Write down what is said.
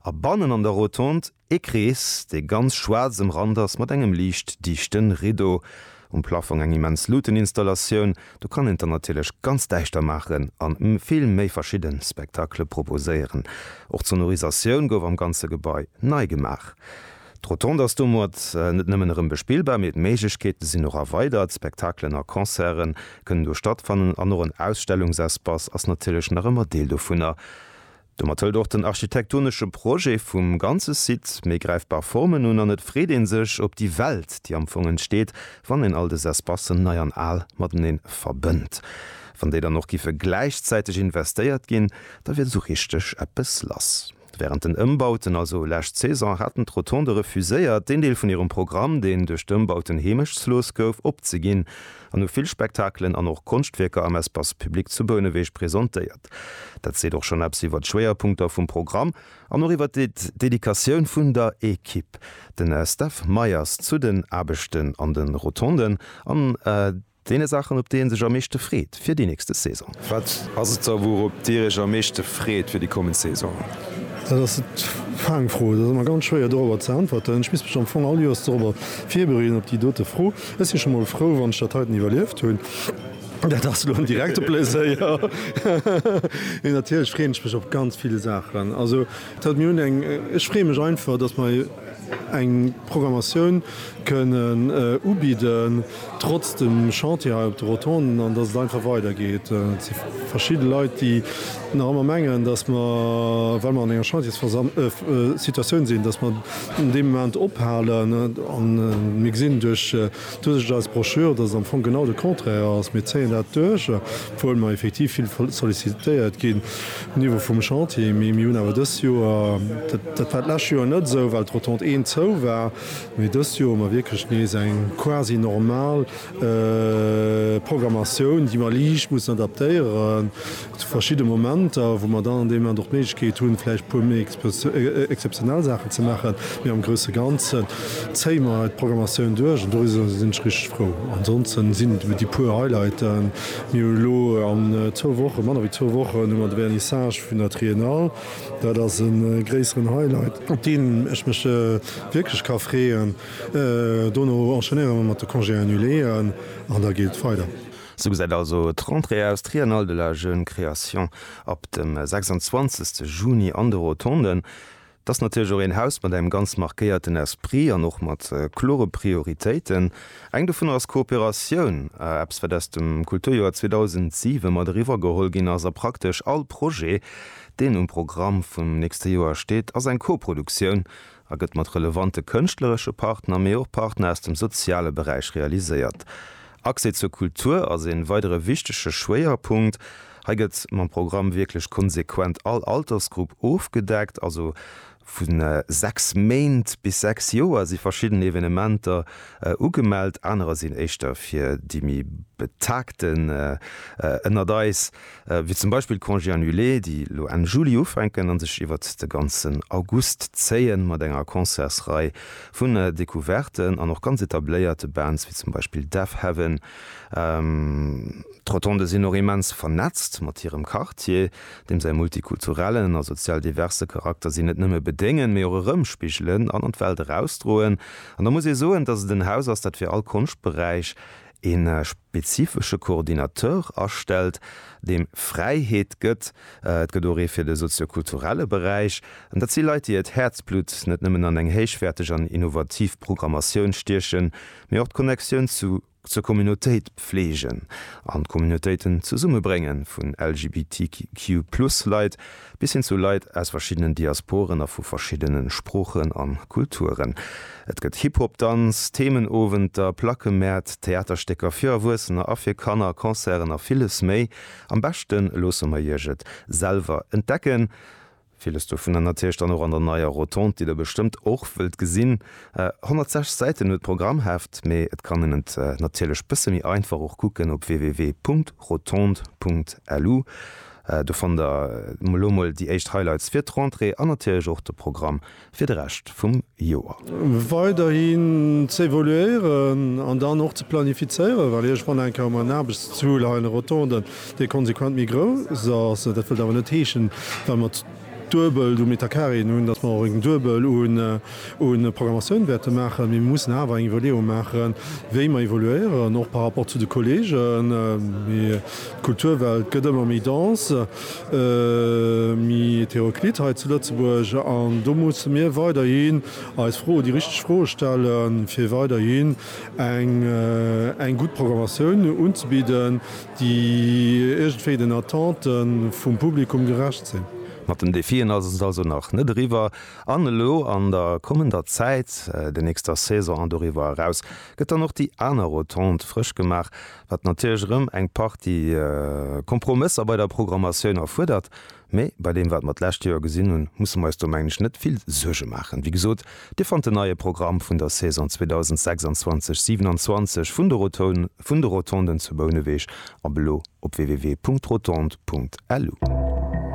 A bannen an der Rotonde ee Krees, dee ganz schwaarz ëmrannt ass mat engem liicht dichte Riddo. Um Plaffong eng immens Luuteninstallatioun. Do kann een et dann natierlech ganz däischter maachen a vill méi verschidde Spectaclë proposéieren. Och d'Sonorisatioun gouf am ganze Gebai nei gemaach. D'Rotonde ass domat net nëmmen erëm bespillbar, mee d'Méiglechkeete sinn och erweidert. Spectaclen a Concerte kënnen do stattfannen an och en Ausstellungsespace ass natierlech nach ëmmer Deel dovunner. Domat hëlt och den architektonesche Projet vum ganze Site méi gräifbar Formen un an et freet ee sech op déi Welt, déi am Fong entsteet, wann een all dës Espacen, nei an al, matenee verbënnt. Wann déi dann och giffe gläichzäiteg investéiert ginn, da wier esou richteg eppes lass. Wärend den Ëmbauten, also lescht Saison, haten d'Rotonde refuséiert, deen Deel vun hirem Programm, deen duerch d'Ëmbauten heemechtslos gouf, opzeginn an hu vill Spektakelen an och Konschtwierker am Espace public zu Bouneweg presentéiert. Dat seet och schonn eppes iwwer d'Schwéierpunkter vum Programm an och iwwer d'Dedikatioun vun der Ekipp. Den Steph Meyers zu den Aarbechten an de Rotonden an deene Saachen, op déi ee sech am meeschte freet fir déi nächste Saison. Wat ass et da, wourop Dir Iech am meeschte freet fir déi kommend Saison? Dat ass d'Fang Fro. Et ass ëmmer ganz schwéier dorobber ze äntwerten. Ech misst mech am Fong all Joers dorobber virbereeden, op déi dote Fro. Ech si scho mol frou, wann ech dat heiten iwwerlieft hunn. Dat ass elo en direkte Pleséier. Mee natierlech freeën ech mech op ganz vill Saachen. Also dat mir hunn eng, ech freeë mech einfach, datt mer eng Programmatioun kënnen ubidden, trotz dem Chantier hei op de Rotonden, an datt et einfach weidergeet. Et si verschidde Leit, déi nach ëmmer mengen, datt mer, well mer an enger Chantiersversamm-, Situatioun sinn, datt mer deem Moment ophalen. An mir gesinn duerch. D'Usicht als Broschür, dass et am Fong genau de Contraire ass. Mir zéien dat duerch, obwuel mer effektiv vill sollicitéiert ginn um Niveau vum Chantier. Mee mir hunn awer dëst Joer, dat war d'lescht Joer net esou, well d'Rotonde 1 zou war, mee dëst Joer hu mer wierklech nees eng quasi normal Programmatioun, déi mer liicht mussen adaptéieren, Zu verschidde Momenter, wou mer dann an deem Moment och d'Méiglechkeet hunn, vläicht e puer méi exzeptionell Saachen ze maachen, mee am grousse Ganzen zéie mer hei d'Programmatioun duerch an doriwwer sinn ech richteg frou. Ansonsten sinn et déi puer Highlighten. Mir hu lo an zwou Wochen, manner wéi zwou Wochen, hu mer de Vernissage vun der Triennale. Dat ass e gréisseren Highlight, op deen ech mech wierklech ka freeën. Dono enchaînéiere mer mat de Congé annuléen an da geet et weider. Sou gesäit also d'Rentrée aus, Triennale de la jeune création ab dem 26 Juni an de Rotonden. Et ass natierlech och een Haus mat engem ganz markéierten Esprit an och mat klore Prioritéiten. Eng dovunner ass Kooperatioun, eppes wat aus dem Kulturjoer 2007 mat eriwwer geholl ginn ass a praktesch all Projet deen um Programm vum nächste Joer steet ass eng Koproduktioun a gëtt mat relevante kënschtleresche Partner, mee och Partner aus dem soziale Beräich realiséiert. Accès zur Kultur ass ee weidere wichtege Schwéierpunkt. Hei gëtt mam Programm wierklech konsequent all Altersgrupp ofgedeckt, also vu 6 Méint bis 6 Joer si verschidden Evenementer ugemellt, anerer sinn éischter fir déi méi Betagten ënnert eis. wéi zum Beispill d'Congés annulés, déi elo Enn Juli ufänken a sech iwwert de ganzen August zéien, mat enger Concertsrei vun Decouverten an och ganz etabléierte Bands, wéi zum Beispill Deafheaven. D'Rotonde sinn och immens vernetzt mat hirem Quartier, deem säi multikulturellen a sozial diverse Charakter si net nëmme bedéngen, mee och erëmspigelen an an d'Welt erausdroen. An da muss ee soen, dass et en Haus ass, dat fir all Konschtberäich ee. spezifesche Coordinateur astellt, deem Fräiheet gëtt, et gëtt och ee fir de sozio-kulturelle Beräich, an dat si Leit, déi hiert Häerzblutt net nëmmen an eng héichwäerteg an innovativ Programmatioun stiechen, mee och d'Connectioun zu zur Communautéit pfleegen an d'Communautéiten zesummebrénge vun LGBTQ-Plus-Leit. Bis hin zu Leit aus verschiddenen Diasporen a vu verschiddene Sproochen an Kulturen. Et gëtt Hip-Hop, Danz, Themenowenter, Plackemäert, Theaterstécker fir Erwuessener a fir Kanner, Concerten a villes méi. Am beschten loosse mer iech et selwer entdecken. Villes dovunner natierlech dann och an der neier Rotonde, déi der bestëmmt och wëllt gesinn. 106 Säiten huet d'Programmheft, mee et kann een et natierlech bësse méi einfach och kucken op www.rotonde.lu. Do fannt der elo mol déi éischt Highlights fir d'Rentrée an natierlech och de Programm fir de Rescht vum Joer. Weiderhin ze evoluéieren an dann och ze planifizéieren, well iergendwann enke hu mer en Aarbechtszuel hei an de Rotonden, dee konsequent méi grouss ass. Dat wëllt awer net heeschen, well mer. Duebel um Metacarien un, datt mer och eng Duebel un Programmatioun wäerte maachen, mee mir mussen awer eng Iwwerleeung maachen, wéi mer évoluéieren, och par rapport zu de Kolleegen. D'Kulturwelt gëtt ëmmer méi dense, méi hétéroclite hei zu Lëtzebuerg an do musse mir weiderhi eis Froe, déi richteg Froe stellen, fir weiderhin eng gutt Programmatioun unzebidden, déi iergendwéi den Attente vum Publikum gerecht sinn. Mat den Defien ass et also nach net eriwwer an elo an der kommender Zäit, der nächster Saison an doriwwer eraus, gëtt dann och déi aner Rotonde frësch gemaach, wat natierlech erëm eng Partie Kompromësser bei der Programmatioun erfuerdert. Mee bei deem wat mer d'lescht Joer gesinn hunn, musse mer eis do mengen ech net vill Suerge maachen. Wéi gesot, Dir fannt den neie Programm vun der Saison 2026, 27 vun de Rotonden, vun de Rotonden zu Bouneweg ab elo op www.rotonde.lu.